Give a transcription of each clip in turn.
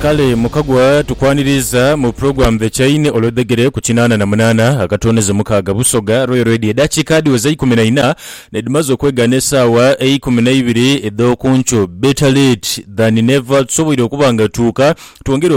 Kale mukagwa tukwaniriiza mu program The Chain olwedhegere ku kinaana na munaana akatonezo mukaaga Busoga Royal Radio edaakiika dhiweze eikumi na ina nedhimaze okwegaana esaawa eikumi na ibiri edh'okunkyo Better late than never tusoboire okuba nga tuuka twongere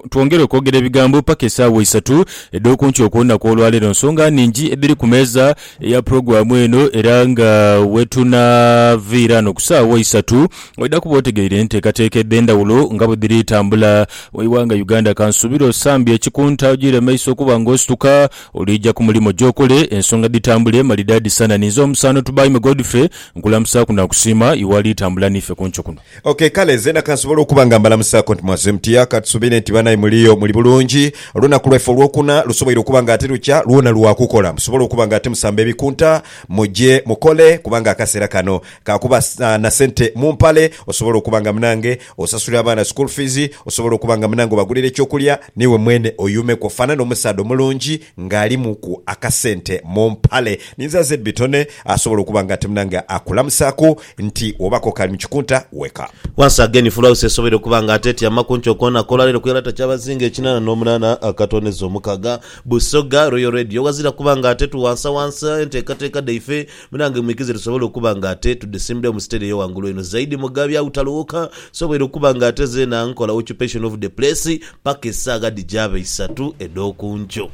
twongere okwogera ebigambo paka esaawa isatu edh'okunkyo okwolunaku olwaleero nsonga ningi edhiri ku meeza eya pulogulaamu eno era nga wetunaviira ghano ku saagha isatu oidha kuba otegeire enteekateeka edh'endhawulo nga bwedhiri tambula mu ighanga Uganda. Kansuubire osambye ekikunta ojiire maiso okuba nga osituka oliija ku mulimo gy'okole ensonga dhitambule malidaadi sana. Ninze omusaano Tubaime Godfrey nkulamusaaku nakusiima iwe ali tambula niife ku nkyo kuno. Ok kale zeena kansobole okuba nga mbalamusaako nti mwazze mutya? Katusuubire nti banaye muliyo muli bulungi. Olunaku lwaife olwokuna lusoboire okuba nga ate lukya lwona lwa kukola. Musobole okuba nga ate musamba ebikunta muje mukole kubanga akaseera kano ka kuba na sente mu mpale osobole okuba nga munange osasulira abaana school fees, osobole okuba nga munange obagulira eky'okulya n'iwe mwene oyuumeku ofaanane omusaadha omulungi. nga alimu ku akasente mu mpale ninzaze bitone asobola okuba nga ati munange akulamusaku nti oba ko kali mu kikunta wake up. Once again full house esoboire okuba nga ate etyama kunkyo kona ku olwaleero ku yalata kyabazinga ekinana nomunana akatoneza omukaga. Busoga Royal Radio wazira kuba nga ate tuwansawansa entekateka dhaife. Munange mwikize tusobole okuba nga ate tudhisimbirawo mu siteri eyo ghangulu einho zaidi Mugabi agho taloowoka nsobwoire okuba nga ate zeena nkola occupation of the place paka esaagha dhijaaba eisatu edh'okunkyo.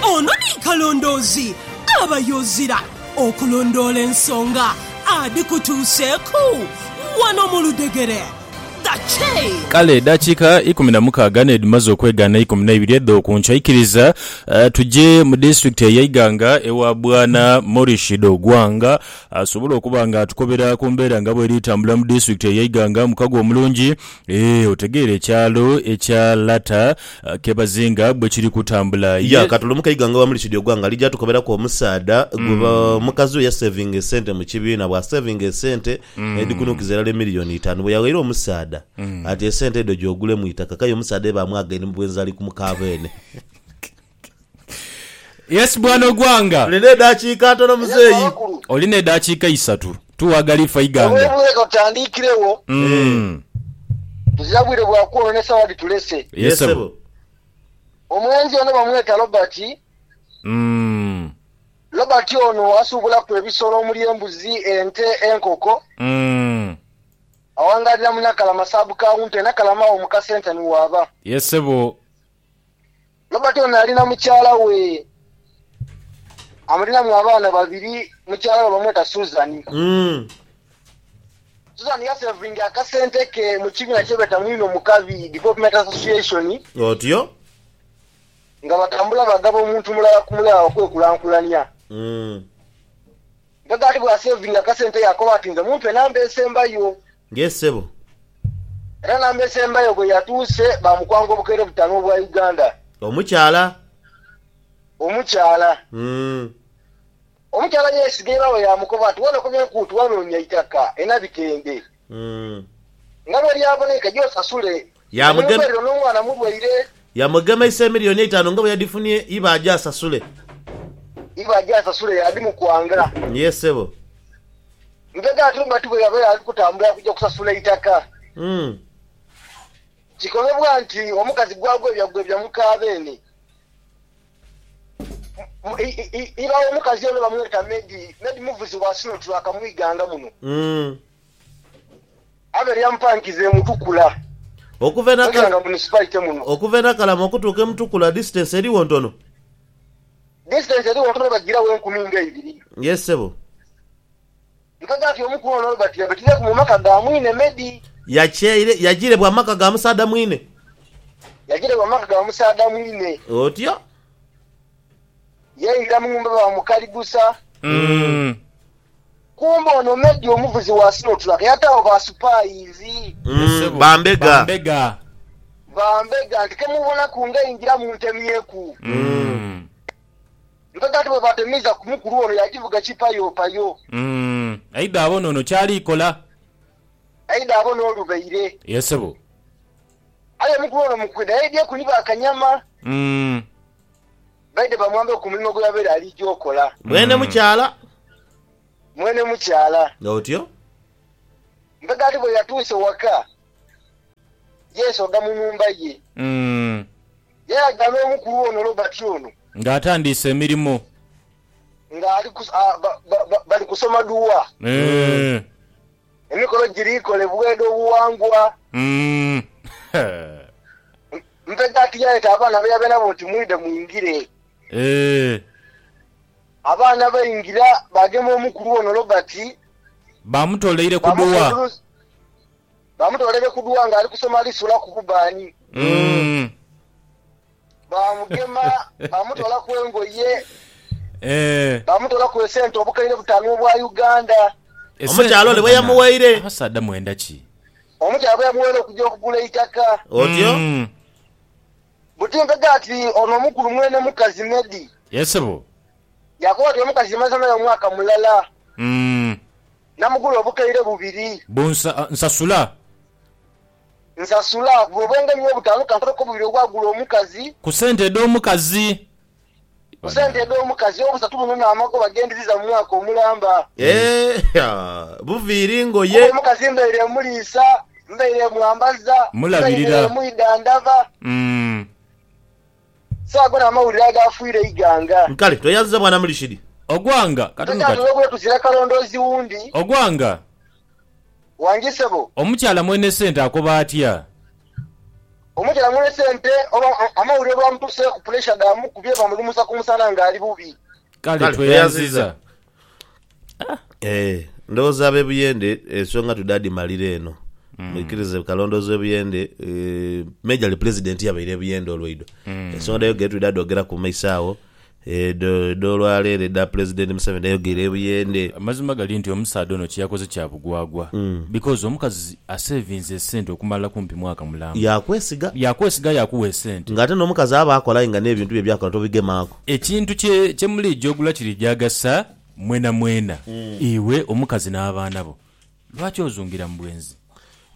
Ono ni Kalondoozi aba yozira okulondoola ensonga adhikutuuseeku wano mu ludhegere. Kale edaakiika ikumi na mukaaga n'edhimaze okwegaana eikumi na ibiri edh'oku nkya, ikiriza tuje mu disitulikiti eya Iganga ewa Bwana Morishid Ogwang asobole okuba nga atukobera ku mbeera nga bw'eri etambula mu disitulikiti eya Iganga. Mukago omulungi eeh, otegeera ekyalo ekya Lata ke bazinga bwe kiri kutambula. Ye. Katulumuke Iganga ewa Morishid Ogwang alija atukoberaku omusaadha gwe mukazi we yaseevinga esente mu kibiina. Bw'aseevinga esente edhikunukiza irala emiliyoni itaanu bwe yaghaire omusaadha ati esente edho gya ogulemu eitaka k'aye omusaadha eba amwagaine mu bwenzi ali ku muka beene. Yes bwana Ogwanga. Tuli n'edaakiika ntono muzeeyi. Oli n'edaakiika isatu. Tugha gali ffa Iganga. Obwire bwire ka tutandiikiregho. Tuzira bwire bwa kwoononesa wa dhitulese. Ye ssebo. Omwenzi ono bamweta Robert. Robert ono asuubulaku ebisolo omuli embuzi, ente, enkoko. Awangaalira mu Nakalama sub county e Nakalama awo mu kasenta ni waaba. Yes sebo. Robert ono ali na mukyala we amulinamu abaana babiri, mukyala we bamweta Susan. Susan yasevinga akasente ke mu kibiina kyebeeta Mwino Mukabi Development Association. Otyo. nga batambula bagaba omuntu mulala ku mulala okwekulankulania. Mpozi ati bw'aseevinga akasente yaakoba ati nze mumpe namba esembayo. Ng'e ssebo. Era namba esembayo bwe yatuuse baamukwanga obukeere butaanu obwa Uganda. Omukyala. Omukyala. Omukyala yeesiga ebaawe yaamukoba ati wano ku bye nkuutu wanoonya itaka e Nabitende. Nga bwe lyaboneika, gye osasule. Yamugem. Enyumba eyo n'omwana mulwaire. Yamugemeisa emilioni eitanu nga bwe yadhifunye iba aje asasule. Iba aje asasule yadhimukwanga. Yee sebo. Lubega ate oba ti bwe yaba yali kutambula kugya kusasula itaka. Umm. Kikolebwa nti omukazi gwagwebya gwebya muka beene. Iba w'omukazi ono bamweta Medi. Medi muvuzi wa sino tulaaka mu ighanga muno. Abe lya mpankiza e Mutukula mu ighanga munisipaite muno. Okuva e Nakalama okutuuka e Mutukula disitansi erigho ntono? Disitansi erigho ntono bagiragho enkumi nga ibiri. Yee ssebo. Nkaga nti omu ku ono Robert yabetireku mu maka ga mwine Medi. Yakyeire, yajirebwa amaka ga musaadha mwine. Yajirebwa amaka ga musaadha mwine. Otyo. Yaingira mu nhumba baamukaligusa. Kumbe ono Medi omuvuzi wa sinotulaka yataagho ba supaayizi. Ba mbega. Ba mbega nti kemubonaku ng'aingira muntemyeku. Nkaga nti bwe baatemiiza ku mukulu ono yaagivuga kipayopayo. Aidha abone ono ky'ali kola. Aidha abone olubaire. Ye ssebo. Aye omukulu ono mu kwidha yaidhieku ni ba kanyama. Baidhe bamwambeku ku mulimo gwe yabaire aliija okola. Mwene mukyala. Mwene mukyala. Otyo. Nkaga nti bwe yatuuse waka, yeesogha mu nhumba ye. Yalaga n'omukulu ono Robert ono. Nga atandiise emirimo. Nga ali ku, a, ba, ba, ba, bali kusoma duwa. Eeh. Emikolo giri kolebwa edh'obuwangwa. Mm. Mpeta ati yaeta abaana be yabaire nabo nti, Mwidhe mwingire. Eeh. Abaana baingira, baagema omukulu ono Robert. Baamutoleire ku duwa. Baamufunduruza. Bamutoolere ku dua nga ali kusoma lisula ku kubbaani. Baamugema, baamutoolaku engoye, baamutoolaku esente obukaire butaanu obwa Uganda. Omukyala ole bwe yamuwaire. Abasaadha mwenda ki? Omukyala bwe yamuwaire okuja okugula eitaka. Otyo. Buti mpega ati ono omukulu mwene mukazi Medi. Yee sebo. Yaakoba ati omukazi maze naye omwaka mulala. Namugula obukaire bubiri. Bwo nsasula. Nsasula. Bwo bwenge niyo butaanu kankoleko bubiri obwagula omukazi. Ku sente edh'omukazi. Ku sente edh'omukazi. Obusatu buno n'amagoba ge ndiziza mu mwaka omulamba. Eehh! Buviiri ngoye. Kuba omukazi mbaire muliisa, mbaire mwambaza, mbaire mwidhandhaba. Saago na mawulire agaafuire eighanga. Nkale tweyanziza Bwana Murishid. Ogwanga, katono kati. Tokyamulwa bweeku zira kalondoozi wundi. Ogwanga. Wangi sebo. Omukyala mwene sente akoba atya? Omukyala mwene sente oba amawulire olwamutuseeku puleesha dhaamukubye bamulumusa ku musana nga ali bubi. Kale tweyanziza. Eh, ndowooza ab'ebuyende ensonga tudhaadhimalira eno. Mwikirize kalondoozi w'ebuyende, eh, me gyali pulezidenti yabaire ebuyende olwaidho. Ensonga dhayogeire twidha dhoogeraku mu maiso agho. Eh, edho- edh'olwaleero edha Pulezidenti Museveni dhayogeire ebuyende. Amazima gali nti omusaadha ono kyeyakoze kya bugwagwa because omukazi asevinze esente okumala kumpi mwaka mulamba. Yaakwesiga. Yaakwesiga yaakuwa esente. Ng'ate n'omukazi aba akola aye nga n'ebintu bye by'akola tobigemaaku. Ekintu kye kye muliija ogula kiriija agasa mwenamwena, iwe, omukazi n'abaana bo. Lwaki ozungira mu bwenzi?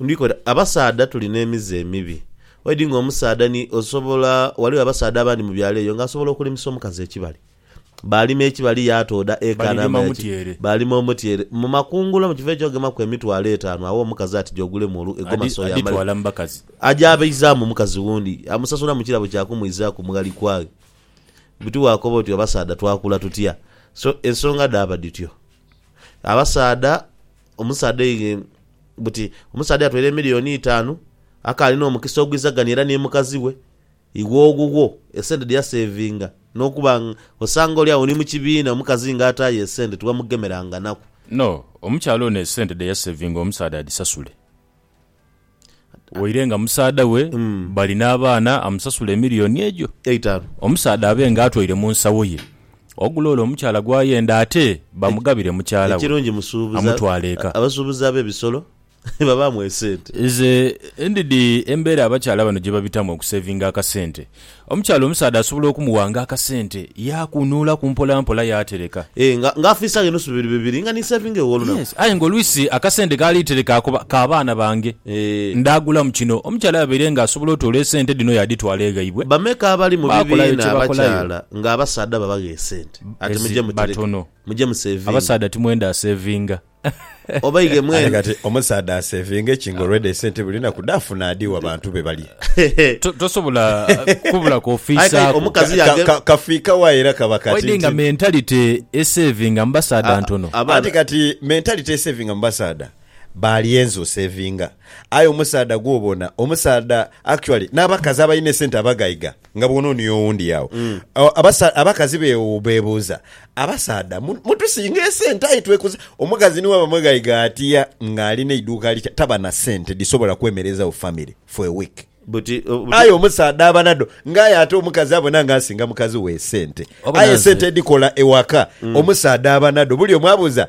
Ndiko oti, abasaadha tuli n'emize emibi. Already ng'omusaadha ni osobola, ghaligho abasaadha abandi mu byalo eyo ng'asobola okulimisa omukazi ekibali. Baalima ekibali yaatooda eka Balirima namba ya ki? omutyere. Baalima omutyere. Mu makungula mu kifo eky'ogemaku emitwalo etaanu agha omukazi ati ja ogulemu olu, egoma Adi- soya amale. aditwala mu bakazi. Aja abaizaamu omukazi wundi, amusasula mu kirabo kya kumwizaaku mu ghali kwaghe. Buti waakoba oti abasaadha twakula tutya? So ensonga dhaaba dhityo. Abasaadha, omusaadha aidha buti omusaadha yatwala emiliyoni itaanu, akaali n'omukisa ogw'eiza gani era ni mukazi we, iwe owuwo esente dhe yaseevinga n'okuba nga osanga oli agho ni mu kibiina omukazi ng'ataayo esente tiwamugemeranga naku. No, omukyala ono esente dhe yaseevinga omusaadha adhisasule. Waire nga musaadha we bali n'abaana amusasula emiliyoni egyo Eitanu. omusaadha abe nga atwaire mu nsawo ye ogula ole omukyala gw'ayenda ate bamugabire mukyala we Ekirungi musuubuzi amutwale eka. abasuubuzi ab'ebisolo babaamu esente. Nze ndidhi embeera abakyala bano gye babitamu okuseevinga akasente. Omukyala omusaadha asobola okumuwanga akasente yaakunuulaku mpolampola yaatereka. Ee, nga, nga afiisa ghe nusu bibiri bibiri, nga ni nseevinga ew'olunaku. Yes. Aye nga oluisi akasente kaali tereka ako ba, ka baana bange. Ee. Ndaagulamu kino. Omukyala yabaire nga asobola otoola esente dhino yaadhitwala eghaibwe. Bameka abali mu Baakolayo bibiina kye bakolayo. abakyala nga abasaadha babagha esente ati, Ezi, Muje mutereke. batono. Muje museevinge. Abasaadha timwenda aseevinga. Obaighe mwene. Aye kati omusaadha asevinge ki nga already esente buli lunaku dhafuna adhiwa bantu be balye? To- tosobola kubula kwofiisaaku Omuka- Kazi Ka- yange- ka- Kafiika wa era kaba kati waidhe nga nti- mentality esevinga mu basaadha ntono. Abaana- Anti kati mentality esevinga mu basaadha baalyenze osevinga aye omusaadha gwobona omusaadha actually n'abakazi abalina esente abagaiga nga bwonoonia owundi agho. O, abasa- Abakazi bewu- bebuuza, Abasaadha mu- mutusinga esente aye twekuza. Omukazi ni bwaba mweghaiga atia nga ali n'eiduuka litya, taba na sente dhisobola kwemerezawo famire for a week. Buti, o, buti- Aye omusaadha aba nadho nga aye ate omukazi abona nga asinga mukazi we esente. Wabona Aye nze- esente edhikola ewaka omusaadha aba nadho. Bulyomu abuuza,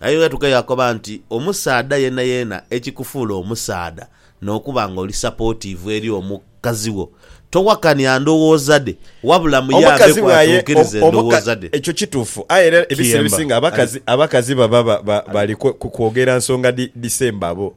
Aye ghatuuka yaakoba nti, Omusaadha yeenayeena ekikufuula omusaadha n'okuba nga oli sapootiivu eri omukazi wo, towakania ndowooza dhe, wabula muyambeku atuukirize endowooza dhe. Ekyo kituufu. Aye era ebiseera ebisinga abakazi baba bali kwogera nsonga dhisemba bo.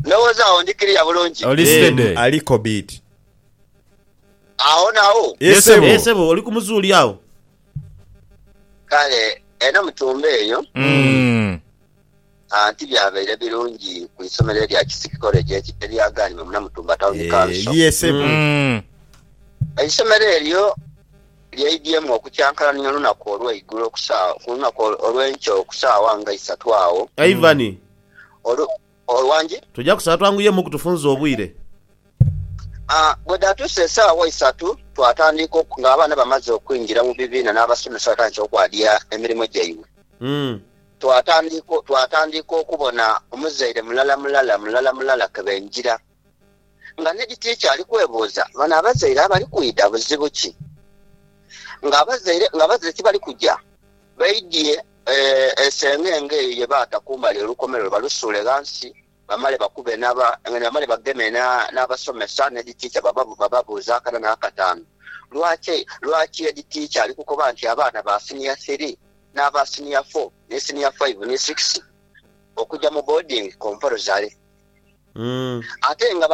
Ndowooza agho ndi kiliya bulungi. Oli steady. Eeh ali kobidi. Agho nawo? Yee sebo. Eeh sebo oli ku muzuuli agho? Kale eno mutumba eyo. Umm. Aah tibyabaire birungi ku isomero elya Kisiki College elya Gaanima mu Namutumba Town Council. Eeh yee sebo. Umm. Eisomero elyo. Lyaidyemu okukyankalania olunaku olweigulo okusaawa, ku lunaku olwenkya okusaawa nga isatu agho. Ivan. Olwo, olwo wangi? Tuja kusaba twanguyemu ku tufunze obwire. A, bwe dhaatuuse esaawa isatu, twatandiika oku, nga abaana bamaze okwingira mu bibiina n'abasomesa batandise okwadia emirimo gyaibwe. Mm. Twatandiika, twatandiika okubona omuzaire mulala mulala, mulala mulala ke baingira. Nga n'edhitiiki ali kwebuuza bano abazaire abali kwidha buzibu ki? Nga abazaire nga abazaire tibali kuja, baidhie esengenge eyo ye baata kumbali olukomerero balusuule ghansi bamale bakube n'aba bamale bageme n'abasomesa n'edhitiiki bababuuze akana n'akataanu. Lwaki lwaki edhitiiki ali kukoba nti abaana ba siniya thiri n'aba siniya fo ni siniya faivu ni sikisi okuja mu boodingi kompalozale? Ate nga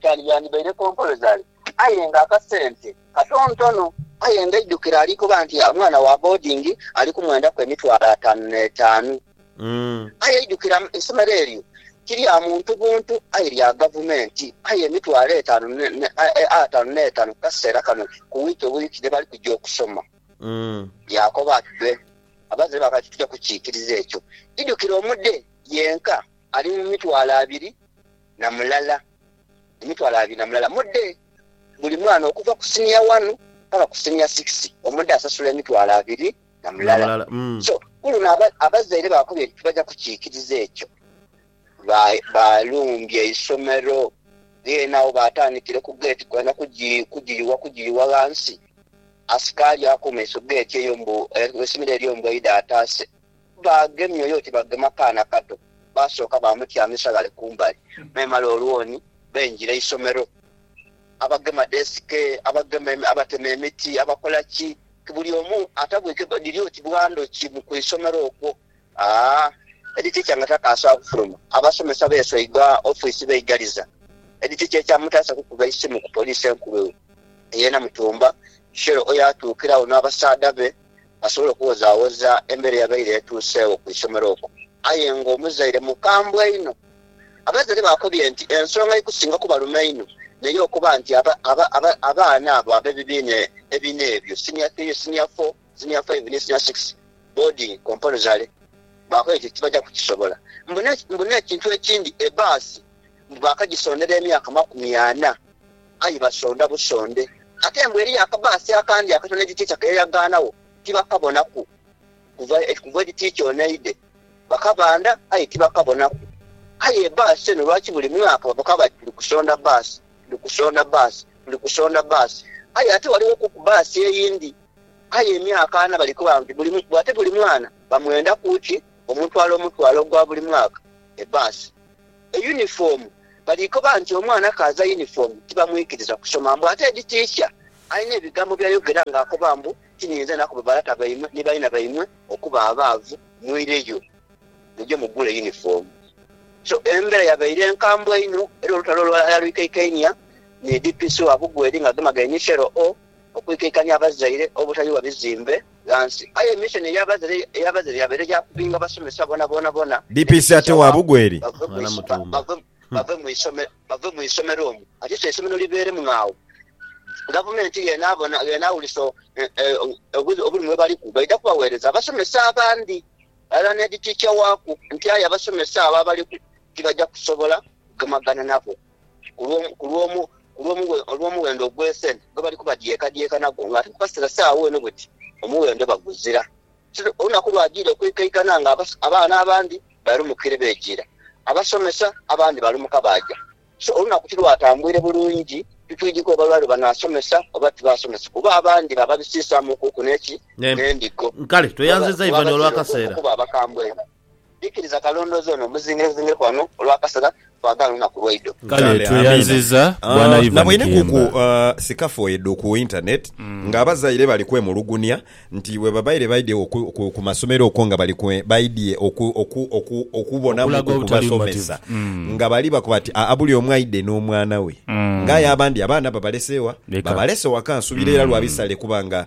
kyandibaire kompolozale aye nga akasente katontono. Aye nga eidhukiro ali kuba nti omwana wa boodingi ali kumwendaku emitwalo ataanu n'etaanu. Aye eidhukiro eisomero eryo ti lya muntu buntu aye lya gavumenti. Aye emitwalo ataanu n'etaanu ku kaseera kano ku wiiki bwiiki dhe bali kugya okusoma. Yaakoba ati, Be, abazadhe bange kati tija kukiikiriza ekyo. Idhukiro omude yenka. Ali mu mitwalo abiri na mulala, emitwalo abiri na mulala mude buli mwana okuva ku senior wanu paka ku senior six omude asasula emitwalo abiri na mulala so kuluno abazaire bakobye nti tibaja kukyikiriza ekyo balumbye eisomero then agho batandikire ku gate kwena kugiyuwa kugiyuwa ghansi asikali ako mumaiso gate eyo mbu eisomero elyo mbu aidha ataase. Baagemye oyo oti bagema kaana kato. Baasooka baamutyamisa ghale ku mbali, memale olwoni beengira eisomero. Abagema desike, abagema, abatema emiti, abakola ki, ti buli omu atabwike gwe dhiri oti bwa ndhoki mu ku isomero okwo. Aa, Edi ticha nga takaasobola kufuluma. Abasomesa beesweiga ofiisi beigaliza. Edi ticha ekyamutaasa kukuba isimu ku Poliisi Enkulu eyo. Yeena mutumba, shero oyo atuukiragho n'abasaadha be. asobole okuwozaawoza embeera eyabaire etuuseegho ku isomero okwo. Aye ng'omuzaire mukambwe inho, abazaire baakobye nti ensonga eikusinga okubaluma einho n'ey'okuba nti abaana abo ab'ebibiina ebina ebyo, Senior Three, Senior Four, Senior Five ni Senior Six, boarding compulsory, baakobye nti tibaja kukisobola. Mbu n'ekintu ekindi, ebbaasi mbu baakagisondera emyaka makumi ana. Aye basonda busonde. Ate mbu eriyo akabaasi akandi akatono egiticha ke yayagaanagho, tibakabonaku. Kuva, kuva egiticha ono eidhe, bakabanda, aye tibakabonaku. Aye ebaasi eno, lwaki buli mwaka baboka bati, Tuli kusonda bbaasi, tuli kusonda bbaasi, tuli kusonda bbaasi. Aye ate ghalighoku bbaasi eyindi. Aye emyaka ana bali koba nti buli, ate buli mwana bamwendaku ki omutwalo omutwalo ogwa buli mwaka, ebaasi. Eyunifoomu, Bali koba nti omwana kaaza yunifoomu tibamwikiriza kusoma mbu ate edi tiicha alina ebigambo by'ayogera ng'akoba mbu tinyinza na kuba balata baimwe ni baina baimwe okuba abaavu muireyo muje mugule yunifoomu So embeera yabaire nkambwe inho era olutalo lwali lwikaikainia ni DPC wa Bugweri ng'agemagaine ni Cheryl O. okwikaikanya abazaire obutayugha bizimbe ghansi aye missoni ey'abazaire yabaire ya kubinga basomesa boonaboona DPC ate wa Bugweri bave mu isomero omwo ate so eisomero libeeremu ng'agho Gavumenti bw'enaawulisa obulumi bwe baliku baidha kubaweereza abasomesa abandi ghalala n'Heedi Tiicha waaku nti aye abasomesa abo abaliku tibaja kusobola kugemagana nabo. ku lw'omuwendo ogw'esente gwe bali kubadyekadyeka nagwo, ng'ate nkubasira saagho eno buti omuwendo baguzira. Olunaku lwajiire okuikaikana nga abaana abandi balumukire bejiira, abasomesa abandi balumuka baaja. So olunaku tilwatambuire bulungi titwidhi kwebala lwe banaasomesa oba tibaasomesa, kuba abandi bababisiisaamukuku n'endigo, kuba baziira okuba abakambwe. Bikiriza kalondoozi ono muzingezingeku ghano olw'akasaga, twagaala olunaku lwaidho. Kale tweyanziza Bwana Ivan Kiyemba. Sikafoedu ku internet nga abazaire bali kwemulugunia nti bwebabaire baidye ku masomero okwo nga bali baidye okubonamuku ku basomesa nga bali bakoba nti aa bulyomu aidhe n'omwana we nga aye abandi abaana babalese wa? Babalese waka nsubira era lwa bisale kuba nga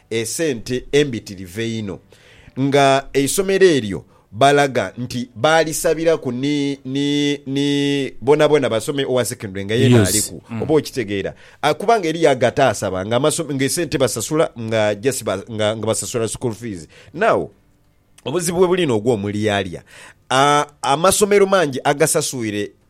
esente embitirivu einho nga eisomero eryo balaga nti baalisabiraku ni ni ni bonabona basome owa secondary nga yeena Yes. aliku oba okitegeera Ah, kubanga eriyo ago ataasaba nga amaso- nga esente basasula nga just ba- nga nga basasula school fees now obuzibu webuli n'ogw'omulyalya Ah, amasomero mangi agasasuire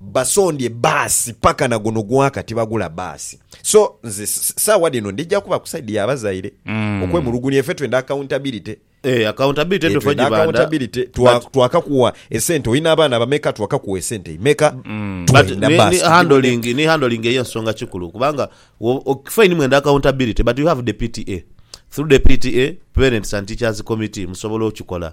Basondye baasi paka na guno gwaka tibagula baasi so nze saawa dhino ndhija kuba ku side ya bazaire okwemulugunya efe twenda accountability. Eeh accountability eeh twenda accountability twakakuwa esente olina abaana bameka twakakuwa esente imeka twenda baasi handling ni handling eyo nsonga kikulu kubanga fine mwenda accountability but you have the PTA through the PTA parents and teachers committee musobola okikola.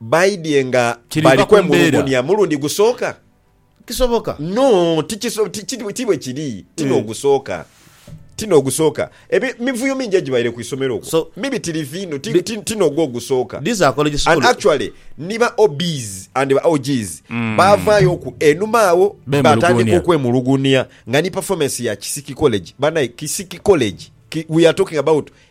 Baidhie nga bali kwemulugunia mulundi gusooka? Kisoboka? No, ti bwe kiri. Ti n'ogusooka. Ti n'ogusooka. Emivuyo mingi egibaire ku isomero okwo mibitirivu inho. Ti n'ogwo ogusooka. And actually ni ba OBs and ba OGs baavaayooku enhuma agho baatandika okwemulugunia nga ni performance ya Kisiki College. Banae, Kisiki College! We are talking about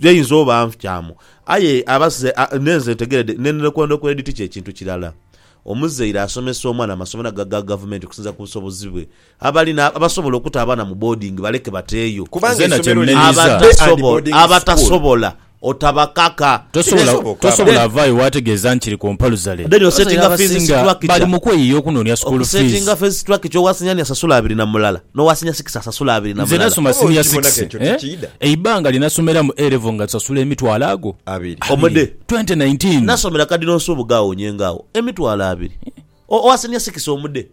Ghainza oba anfukyamu, aye aba se a, n'enze ntegeredde ne nrekwendo kw'eri ti kye kintu kirala. Omuzaire asomesa omwana mu masomero ago aga Gavumenti okusinziira ku busobozi bwe. Abali na, abasobola okuta abaana mu boodingi baleke bateeyo. Kubanga Nze na kye eisomero liri mmenyiza. day and Abatasobo, boarding school. abatasobola otabakaka. Tosobola, Kineesoboka. tosobola Then- avaayo waategeeza nti kiri ku mpaluzale. Then Abazaire osettinga fees abasinga structure. bali mu kweyiiya okunoonia school fees. Okusettinga fees structure owa senior ni asasula abiri na mulala. N'owa siniya sikisi asasula abiri na Nze mulala. nasoma Oba siniya okibona sikisi. k'ekyo tikiidha? Eibanga lye nasomeramu A Level nga tusasula emitwalo ago Abiri. Omudde. 2019. Nasomera Cardinal Nsubuga agho Nyenga agho, emitwalo abiri. O, owa siniya sikisi omudde.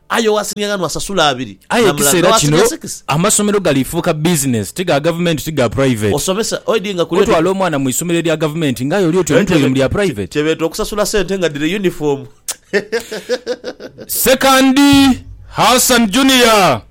Aye owa siniya ghanu asasula abiri Aye na mulala. ekiseera N'owa kino siniya sikisi. amasomero galifuuka bizinensi, ti ga Gavumenti ti ga puraiveti. Osomesa, oidhi nga kuli oti. Otwala omwana mu isomero erya Gavumenti ng'aye oli oti omutwele mu lya puraiveti. Kye beeta okusasula sente nga dhiri yunifoomu. Sekandi Hassan Junior.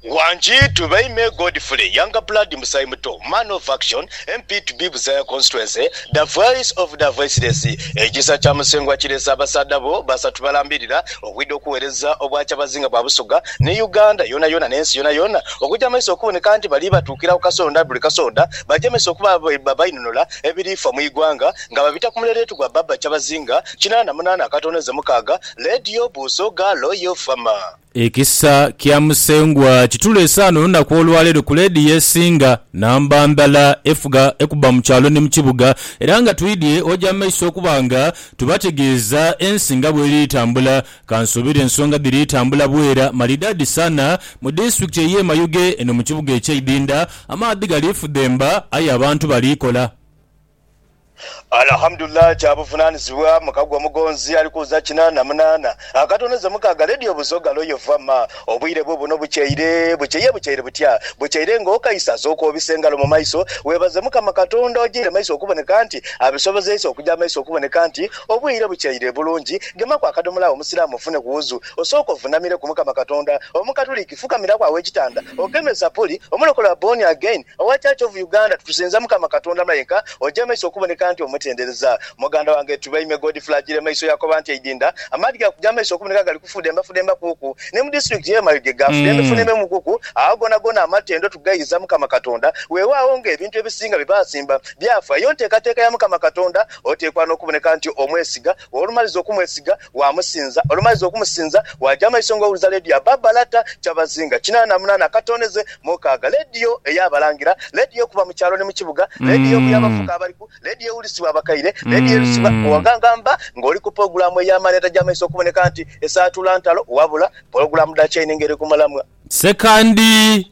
Wangi to Baime Godfrey, Younger Blood Musaayi Muto, Man of Action, MP to be Buzaaya Constituency, The Voice of the Voiceless, Ekisa kya Musengwa kireese abasaadha bo basatu balambirira okwidha okuweereza Obwakyabazinga bwa Busoga ni Uganda yoonayoona n'ensi yoonayoona okugya mu maiso okuboneka nti bali batuukira ku kasonda buli kasonda bagemese okuba abainunula ebirifa mu igwanga nga babita ku muleeleetu gwa Baba Kyabazinga Kinaana munaana akatoonheze mukaaga Leedi y'obuuso ghaalo y'ofama. Ekisa kya Musengwa kituleese ghano olunaku olwaleero ku Leedi y'esinga namba ndhala efuga ekubba mu kyalo ni mu kibuga era nga twidhye oja mu maiso okuba nga tubategeeza ensi nga bweri tambula. Kansuubire ensonga dhiri tambula bwera malidaadi sana mu disitulikiti ey'e Mayuge eno mu kibuga eky'eidhindha. Amaadhi gali fudhemba aye abantu bali kola. Alhamdulillah kya buvunanizibwa mukagwa omugonzi ali kuza kinana munana akatono ze mukaga radio buzoga loyo vama obwire bubuno bukyeire bukyeia bukyeire butya bukyeire nga okaisa zo kwobisa engalo mumaiso webaze mukama katonda ojeire maiso okuboneka nti abisobozeisa okuja maiso okuboneka nti obwire bukyeire bulungi gemaku akadomola awo omusilamu ofune ku wuzu osooke ovunamireku mukama katonda omukatuliki fukamiraku awo ekitanda ogeme sapuli omulokole are born again Owa Church of Uganda tukusinza mukama katonda mayenka oja maiso okuboneka nti omutendereza muganda wange tuba ime God flagile maiso yakoba nti eidinda amaadhi gakuja maiso okuboneka gali kufudemba fudemba kuku ni mu district ye mayuge gafudembe fudembe mu kuku agho gona gona amatendo tugayiza mukama katonda wewagho nga ebintu ebisinga byebasimba byafa eyo ntekateka ya mukama katonda otekwa nokuboneka nti omwesiga wolumaliza okumwesiga waamusinza. Olumaliza okumusinza, waaja amaiso nga owuliza leediyo ya Baba Lata Kyabazinga kinaana na munaana akatoonheze mukaaga. Leediyo ey'abalangira, leediyo ekuba mu kyalo ni mu kibuga, leediyo ebuya abavubuka abaliku, leediyo ewulisibwa abakaire, leediyo elusibwa owagangamba nga oli ku pulogulaamu ey'amaani etaja maiso okuboneka nti esaatula ntalo wabula pulogulaamu dha chaini nga eri ku mulamwa. Ssekandi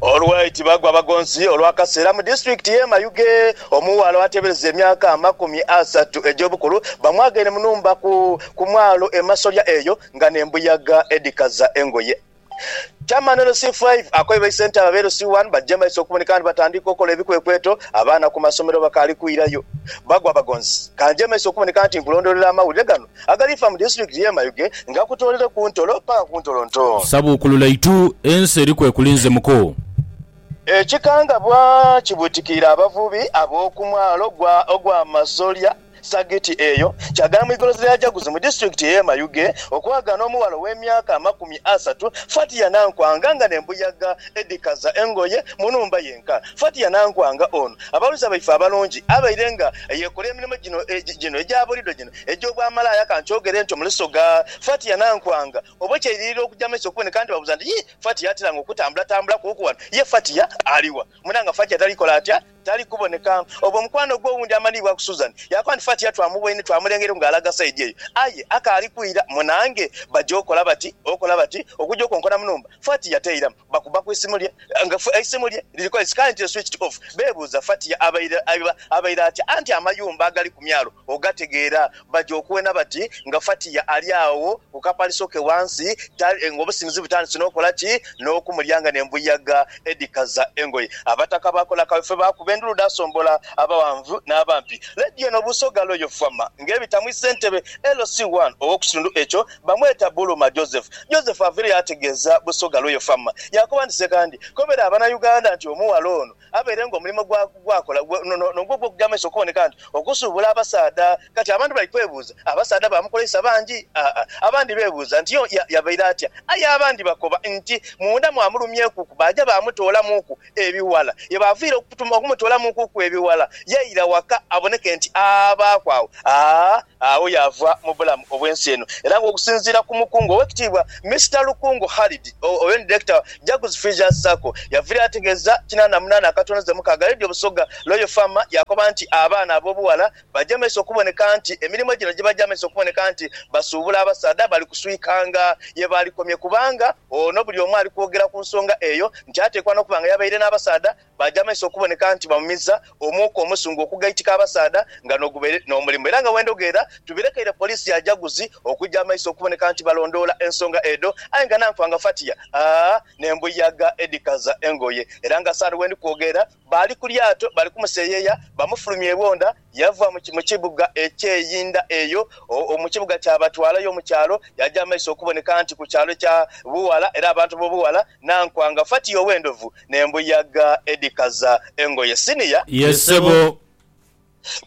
Olwei Tibagwa Bagonzi olw'akaseera mu disitulikiti y'e Mayuge, omughala oateebereza emyaka amakumi asatu egy'obukulu bamwagaine mu nhumba ku ku mwalo e Masolya eyo nga n'embuyaga edhikaza engoye. Chairman LC Five akoye baisente abo aba LC One baggye maiso okuboneka ni batandiika okukola ebikwekweto abaana ku masomero bakaali kwirayo. Bagwa Bagonzi, Ka ngye maiso okuboneka nti nkulondoolera amawulire gano Agalifa mu disiturikiti y'e Mayuge ngakutoolere ku ntolo paka ku ntolo nto. Sabuukulula itu, ensi eri kwekulinze muko. Ekikangabwa kibwitikiire abavubi ab'oku mwalo gwa ogwa Masolya sagiti eyo kyagala mu igolozi lya Jaguzi mu disiturikiti ey'e Mayuge okwagaana omughala ow'emyaka amakumi asatu Fatia Nankwanga nga n'embuyaga edhikaza engoye mu nhumba yenka. Fatia Nankwanga ono abaghuliriza baife abalungi abaire nga yekola emirimo gino gino egya bulido gino Egy'obwamalaaya ka nkyogere ntyo mule Soga. Fati yanankwanga oba ekyeiririro okuja maiso okuboneka nti babuuza nti, Yii, Fati yatiranga okutambulatambula kuuku wano? Ye Fati ya ali wa? Mwena nga Fati atali kola atya? Tali kuboneka. Obwo mukwano gwe owundi amanhiibwa ku Susan yaakoba nti, Fati ya twamuboine, twamulengeireku nga alaga saidi eyo. Aye akaali kwira. Mwena nge baja okola bati, okola bati, okuja okonkona mu nhumba. Fati ya teira. Bakuba ku isimu lye nga eisimu lye liri ku sikayenti eswitched off. Beebuuza Fatia abaire abaire atya anti amayumba agali ku myalo ogategeera. Baja okuwena bati nga Fatia ali agho ku kapaliso ke wansi ng'obusinzi butandise n'okola ki? N'okumulya nga n'embuyaga edhikaza engoye. Abataka baakola kawefube baakuba endulu dhaasombola abaghanvu n'abampi. Lady ono Busoga Royal Farmer ng'ebita mu isentebe LC1 ow'okukitundu ekyo Bamweta Buluma Joseph. Joseph avire yaategeeza Busoga Royal Fam. Yaakoba nti, Sekandi, kobera Abanauganda nti omughala ono abeere nga omulimo gwa gwakola gwe nogwo ogw'okugya amaiso okuboneka nti okusuubula abasaadha. Kati abantu bali kwebuuza, abasaadha baamukoleisa bangi? Aa. Abandi beebuuza nti yo ya yabaire atya? Aye abandi bakoba nti munda mwamulumyekuku baaja baamutoolamuuku ebighala. Ye baaviire okutuma okumutoolamuukuku ebighala yaira waka aboneke nti abaaku agho. Aa. Agho yaava mu bulamu obw'ensi eno era nga okusinziira ku mukungu Owekitiibwa Mister Lukungu Khalid Owen Director Jaguzi Freesias Sacco yaviirayo ategeeza kinaana munaana akatono ze mukaaga Radio Busoga Royal Farmer yakoba nti abaana ab'obughala baja maiso okuboneka nti emirimu gino gibaja maiso okuboneka nti basuubula abasaadha bali kuswika nga yebaalikomye kubanga ono buli omu ali kwogera ku nsonga eyo nti ateekwa n'okuba nga yabaire n'abasaadha Baja maiso okuboneka nti bamumiza omuuka omusungu okugaitika abasaadha nga nogubaire nomulimu era nga wendhogeera tubirekeire police ya Jaguzi okuja maiso okuboneka nti balondoola ensonga edho aye nga nanfa nga fatiya aa nembuyaga edhikaza engoye era nga saano wendi kwogeera baali kulyato bali kumuseyeya bamufulumya ebwondha Yava mu, mu kibuga eky'einda eyo, o, mu kibuga kyabatwalayo mu kyalo, yaaja amaiso okuboneka nti ku kyalo kya bughala, era abantu b'obughala, n'ankwanga fatiya ow'endhovu n'embuyaga edhikaza engoye. Siniya. Ye ssebo.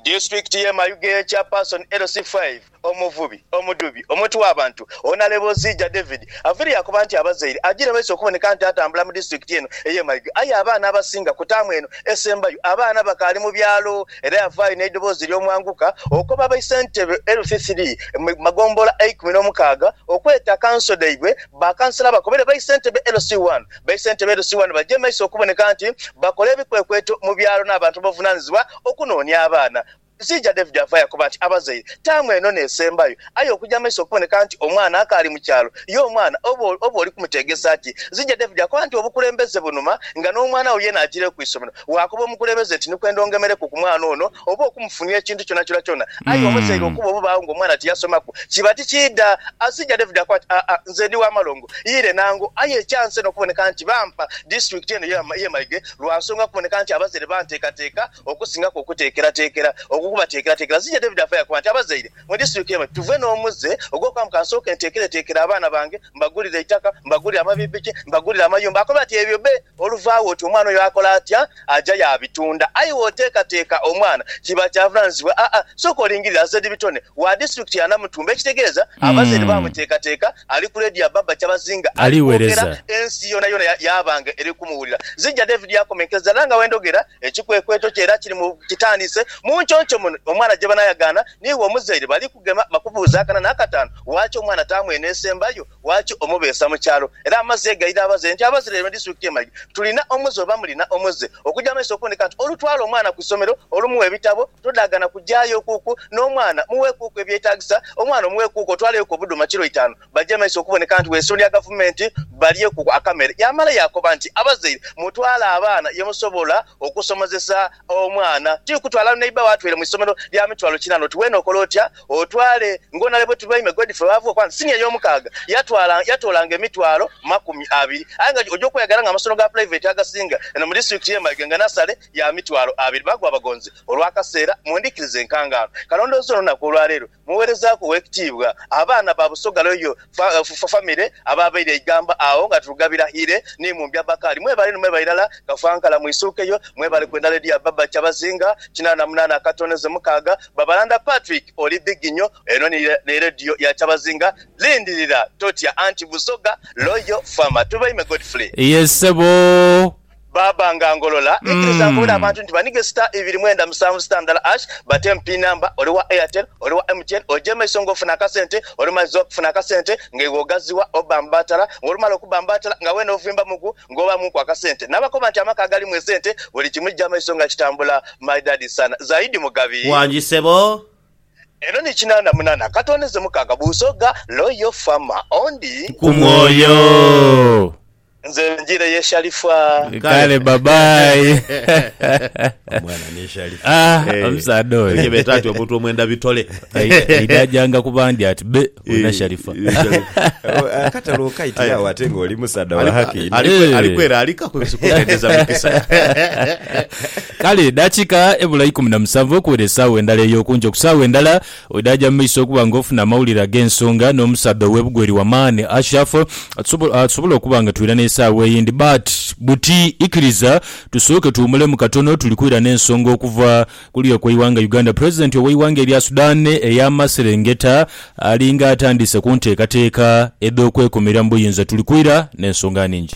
Disitulikiti y'e Mayuge, Chairperson LC five. Omuvubi, omudhubi, omwoti w'abantu, Honalebozi Ja David avaire yakoba nti abazaire agira baisa okuboneka nti atambula mu disitulikiti eno ey'e Maiga aye abaana abasinga ku taamu eno esembayo abaana bakaali mu byalo era yavaayo n'eidhoboozi ery'omwanguka okoba aba Isentebe Health Three mu magombolola eikumi n'omukaaga okweta kanso dhaibwe bakansala bakobere ba Isentebe LC One ba Isentebe LC One bagye maiso okuboneka nti bakola ebikwekweto mu byalo n'abantu abavunanizibwa okunoonia abaana Ekiija David afa yakoba nti, Abazaire, taamu eno n'esembayo. Aye okuja amaiso okuboneka nti omwana akaali mu kyalo, ye omwana oba oba oli kumuteegesa ki? Ekiija David akoba nti, Obukulembeze bunuma, nga n'omwana wo yeena ajiireyo ku isomero. Waakoba omukulembeze nti, Ni kwenda ongemereku ku mwana ono oba okumufunia ekintu kyonakyona kyona. Aye omuzaire okuba obubaagho ng'omwana tiyasomaku, kiba tikiidha. Ekiija David akoba nti, Aa, nze ndi wa malongo, ire nangu. Aye ekyansa eno okuboneka nti bampa disiturikiti eno y'e Maige lwa nsonga kuboneka nti abazaire banteekateeka Okusingaku okuteekerateekera okwo kubateekerateekera. Zija David afa yakoba nti, Abazaire, mu disituriki eno tituvwe n'omuze ogw'okugamba ka nsooke nteekereteekere abaana bange, mbagulire eitaka, mbagulire amapikipiki, mbagulire amayumba. Akoba ati, Ebyo be oluvaagho oti omwana oyo akola atya? Aja yaabitunda. Aye bw'oteekateeka omwana kiba kya vunaanyizibwa. Aa, sooka olingirire aze dhi bitone wa disiturikiti ya Namutumba. Ekitegeeza abazaire baamuteekateeka ali ku leediyo ya Baba Kyabazinga ali kwogera, Aliweereza. ensi yoonayoona ya, yaaba nga eri kumuwulira. Zija David yaakomenkereza era nga bwe ndhogera, Ekikwekweto kyo era kiri mu kitandise. Mu nconco muno omwana gye banaayagaana n'iwe omuzaire bali kugema bakubuuze akana n'akataanu waaki omwana taamwene esembayo, waaki omubeesa mu kyalo. Era amazzi ghegaire abazaire nti abazireire mu disitulikiti y'e Mayuge tulina omuze oba mulina omuze? Okugya mu maiso okuundika nti olutwala omwana ku isomero olumuwa ebitabo todaagana kugyayokuku n'omwana muweekuuku ebyetaagisa, omwana omuweekuuku otwaleyoku obuduma kiro itaanu, Bajemeisa okuboneka nti bw'eisubi lya gavumenti balyeku akamere. Yaamala yaakoba nti, Abazaire mutwale abaana ye musobola okusomozesa omwana. Tiri kutwala neiba wo atweire mu isomero lya mitwalo kinaana oti weena okola otya otwale ng'onale bwe tulwaime grade ffe baavuga okuba nti siniya ey'omukaaga yatwala yatoolanga emitwalo makumi abiri aye nga oja okweyagala nga amasomero ga pulaiveti agasinga eno mu disitulikiti y'e Mayuge nga nasale ya mitwalo abiri bagwa bagonze olw'akaseera. Mundhikirize nkangaanu kalondoozi olunaku olwaleero. Mugheerezaaku ow'ekitiibwa abaana ba Busoga Royal Family abaabaire eigamba agho nga Turugabira Hire ni Mumbya Bakali. Mwebale ni mwebale irala Kafankala mwisuukeyo. Mwebale kwendha Lydia Baba Kyabazinga kinaana munaana akatoneze mukaaga. Babalanda Patrick oli big nyo. Eno ni Radio ya Kyabazinga. Lindirira totya anti Busoga Royal Fama. Tubaime Godfrey. Yes sebo Baba nga ngolola ikiriza nkobere abantu nti banige star ibiri mwenda musanvu star ndala harsh batemu pin number oli wa airtel oli wa MTN oje maiso nga ofuna akasente olumaze okufuna akasente nga iwe ogaziwa obambatala nga olumala okubambatala nga wena ovimba muku nga obamu ku akasente nabakoba nti amaka agalimu esente buli kimu kija maiso nga kitambula my daddy sana zaidi mugabi. Wangi sebo. Eno ni kinana munana katondeze mukaga busoga loyal farmer ondi. Kumwoyo. Nze njire ye shalifaa. Kale bye bye. Omwana ni Shalifa. Ah, Eh, omusaadha oyo. Ebyo beta ati omuntu omwenda bitole. Eidha ajanga ku bandi ati be wena Sharifa. Akatale okaitira awo ate nga oli musaadha wa haki inho. Ali kwe- ali kwera alika kukendeza mikisa. Kale edakika ebula ikumi na musanvu okuwera esaawa endala eyokunjo ku saawa endala Bwedha aja mu maiso okuba nga ofuna amawulire ag'ensonga n'omusaadha owe bugwe eri wamaani Ashraf, tusobola okuba nga twira n'esaawa eyindi but buti ikiriza tusooke tuwumulemu katono tuli kwira n'ensonga okuva kuli okweiwanga Uganda President oweiwanga erya Sudan eyamaserengeta alinga atandiise kunteekateeka edhokwekumira mu buyinza tuli kwira n'ensonga ningi.